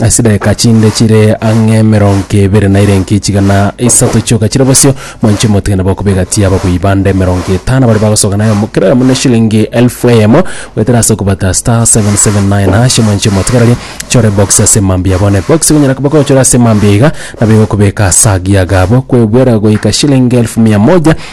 Ase chidakika chinde chire ang'e emerongo ebere na erenki chigana isato chioka chire bosio, mwanche omotige nabo okobegatia ababui bande emerongo etano baria bagosoka naye omo- kera oyomo na eshilingi elfu eyemo, goetera ase okobata *779#, mwanche omotigererie chore box ase mambia abwo. Ne box egonyara koba gochora ase mambia iga, nabo egokobeka ase agiaga abwo, kwebuera goika shilingi elfu mia moja,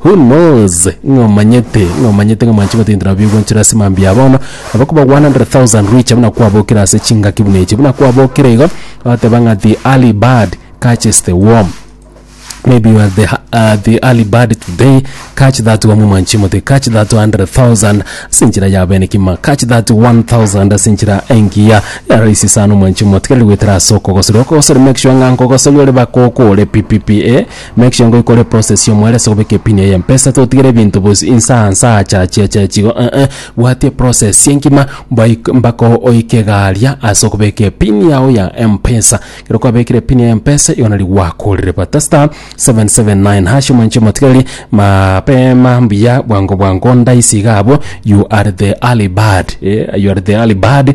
Who knows? Ng'a omanyete, ng'a omanyete ng'a mwanching'o tindi nabo bigwenchire ase mambia ya bono, nabo koba 100,000 rich buna kwabokire ase chingaki buna echi, buna kwabokire igo, oteba ng'a the early bird catches the worm. Maybe you are the, ha- uh, the early bird today, catch that worm mwanching'o te, catch that 100,000 ase enchera ya bene kima, catch that 1,000 ase enchera engiya, ya rahisi sana mwanching'o, tiga rigwetera ase okogosori, okogosori make sure ng'a nkogosori ore baka okore pipipi, eh. Make sure ngoi kore process y'omoyo ere ase gobeka epin eye mpesa totigere ebinto bos insaa nsaa cha chia cha chigo eeh bwatia process engima mbaik mbaka oike garia ase okobeka epin yao ya mpesa ekero kwabekire epin ya mpesa igo nari gwakorire bata star seven seven nine hash omonche omotigareri mapema mbuya bwango bwango ndaisi iga abwo you are the early bird eh you are the early bird.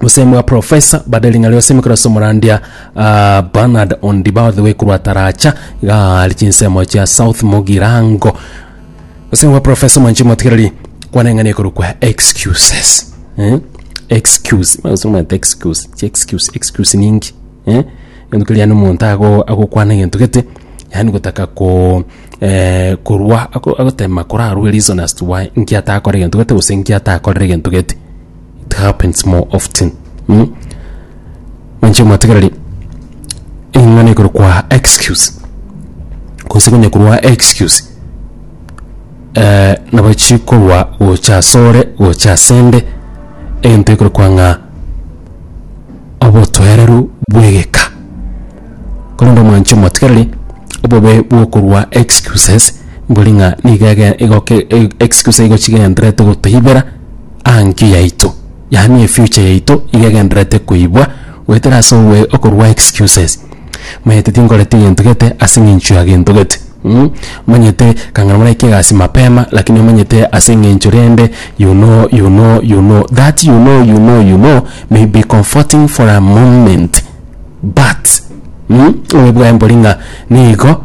gose mwa professor bade ring'ana riose imekero ase omorandia ah, Bernard Ondiba all the way korwa Taracha iga ari chinsemo chia South Mugirango gose mwa professor mwanchi motigereri kwana eng'ana ekorwa kwa excuses eh? excuse gose omanyete excuse chi excuse excuse ninki eh? egento keria yani omonto ago agokwana egento gete yani gotaka ko eh, korwa ago- agotema korarwe reason as to why inki atakore egento gete gose inki atakorire egento gete It happens more often. Mm? Manche mwatigereri eng'ana ekoro kwa excuse gose konya korwa excuse eh, nabo chikorwa gocha asore gocha asende egento ekoro kwa ng'a obotwereru bwegeka korende omwanche omwatigereri obobe bwokorwa excuses mbori ng'a niga ege- igoke e- excuse igochigenderete gotoibera Ang'e yaito, yaani efuture yaito iga egendererete koibwa goetera ase ogoe okorua excuses. Omanyete tinkoreti gento gete ase eng'encho ya gento gete mm omanyete kang'ana moraikie egasi mapema lakini omanyete ase eng'encho rende you know you know you know that you know you know you know may be comforting for a moment but mm oebwae mbori ng'a nigo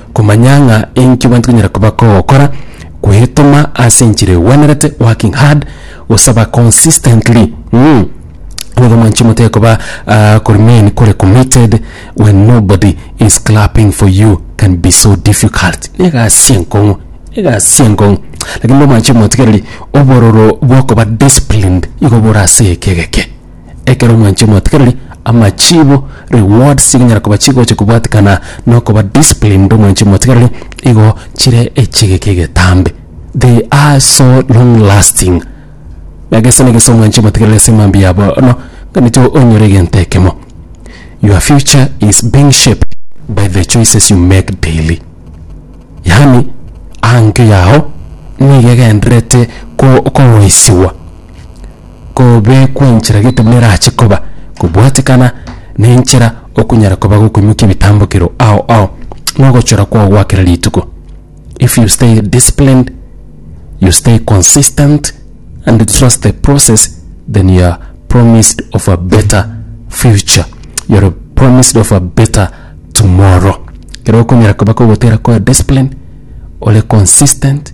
Komanya ng'a enki abanto banyara koba kogokora kwetoma ase enchera egwenerete, working hard, gosaba consistently, mm, nigo mwanche motige koba ah, ko remain kore committed when nobody is clapping for you can be so difficult. Ne egasi enkong'u, egasi enkong'u lakini nigo mwanche motigereri obororo bwokoba disciplined igo bore ase ekegeke. Ekero mwanche omwatikereri amachibo, rewards, chikonyara koba chigocha kobwatikana na okoba disciplined omwanche omwatikereri, igo chire echigeke egetambe. They are so long lasting. Na gese na gese omwanche omwatikereri ase mambia ya bono nganintyo onyore egento ekemo. Your future is being shaped by the choices you make daily. Yaani aanke yao nigo egendererete ko- koroisiwa. kobekwa enchera getumo nerache koba kobwatekana nenchera okunyara koba gokoimokia ebitambokero ao ao nogochora kwao gwa kera rituko if you stay disciplined you stay consistent and trust the process then you are promised of a better future you are promised of a better tomorrow kero okonyara koba kogotera koba disciplined ore consistent